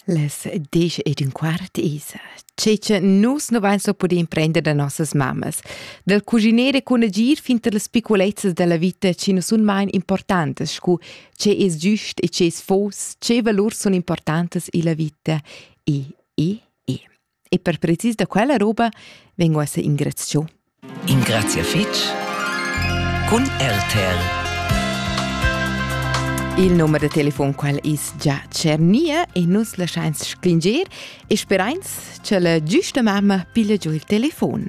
Les disch ed ün quart isa, che cha nus nu vain so pudé imprender da nossas mammas, dal cuginere cun agir fin tar las piculezzas da la vita chi nu sun main importantas scu che es giüst e che es fos, che valurs sun importantas illa vita e, e, e. E per precis da quella roba vengo a se ingrazio. Ingrazia fitch cun RTL. Il numero de telefon qual is già cernia e nus lasciains sclingier e sperains che la giusta mamma piglia giù il telefon.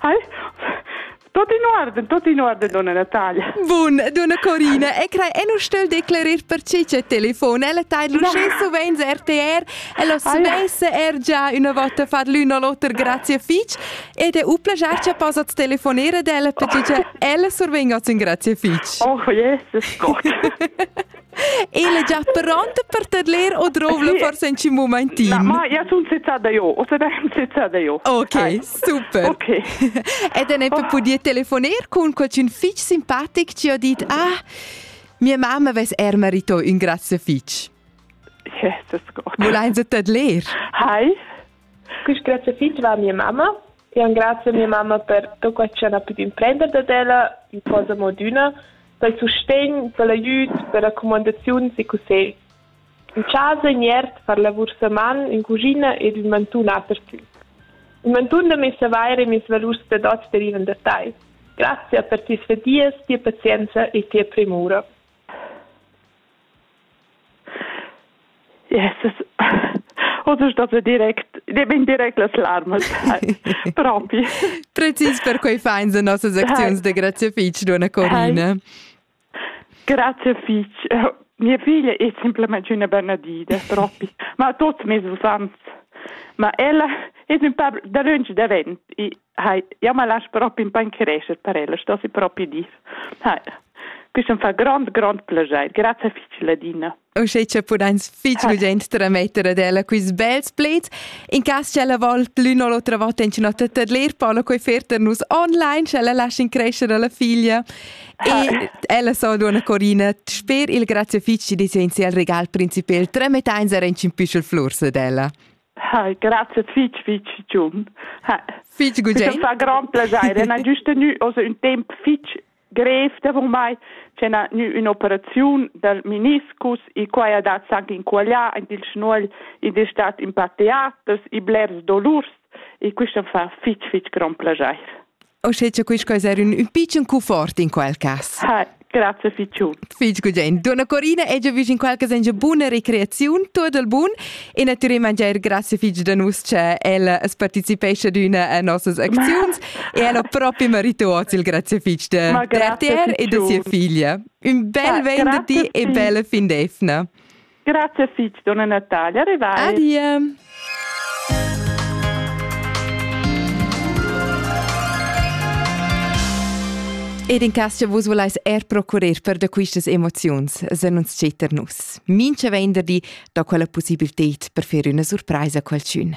Hai? Tot in orden, tot in orden, donna Natalia. Bun, donna Corina, e crai, e nu stögl declerir perche che telefon, ella taid l'uschè suvenz RTR, ella suvesse er già una volta far l'un o l'oter grazie fitch, ed è u plagiar che possat telefonere ad ella perché che ella survenga in grazie fitch. Oh, Jesus Gott. El è già pronta per tadler o drovla forse in mumentin. Na, ma io sono sezzata io, o sarei sezzata io. Ok, Dai. super. Ok. Ed ne oh. podia telefonar con qualcun fitch simpatic ci ho dit, ah, mia mamma ves er marito un grazie fitch. Jesus Gott. Volein Sie tadler? Hi, quest grazie fitch va a mia mamma. E un grazie a mia mamma per tutto quello che ha potuto imprendere da ella in posa moduna dal sustegn da l'aiüd da racumandaziuns e cussegls. In chasa in iert far lavur sa man in cuschina ed ün mantun apertü. Il mantun da messa vaira e mes valurs da dot derivan da tai. Grazie per tes fadias, tia pazienza e tia premura. Yes, Oder state direct, bin direct las larmas. Propi. Precis per quei feins en nossas acziuns de grazie fitch, dona Corina. Grazie fitch. Mia figlia è semplicemente una benedida, troppi. Ma tutti mi usans. Ma ella è un po' da lungi davent e Hai, ja ma lasch propi in pan crescher per ella, sto si propi dis. Hai. Quist am fa grond, grond plaschair. Grazie fich, Ladina. Uschè cha pudains fich urgent trametter ad ella quist bels pleds. In cas ch'ella vol l'ün o l'otra vota in ün'ota tadler, Paolo quei fer per nus online, sch'ella lascia in crescere alla figlia. E ella so duonna Corina, sper il grazie fich ci disegni al regal principal, tramettains er in püschel flurs ad ella. Ah, grazie fitch, fitch giun. Fitch gudegn. fa grand plagier. Na giusta nu also un temp fitch grev davon mai c'è na nu un'operazione dal meniscus e qua ha dat anche in quaglia in il schnuol ed è stat in pa teaters e blers dolurs e questo fa fitch fitch grand plagier. O sche c'è quis cosa era un piccin cufort in quel cas. Ha, grazie fichu. Fig gugent. Donna Corina è già vis in quel cas in buona recreazione, tutto il buon e naturalmente mangiare grazie fig da nus che ella partecipesce ad una a nossas aczions e ella proprio merito oz il grazie fig de, Ma de te e de sia figlia. Un bel ah, vent da ti e bella fin d'efna. Grazie fitg, donna Natalia. Arrivai. Adie. Ed in cas che vus volais er procurer per da quistas emoziuns, se non scetter nus. Mincha venderdi do quella possibilität per fer üna surpraisa a qualchün.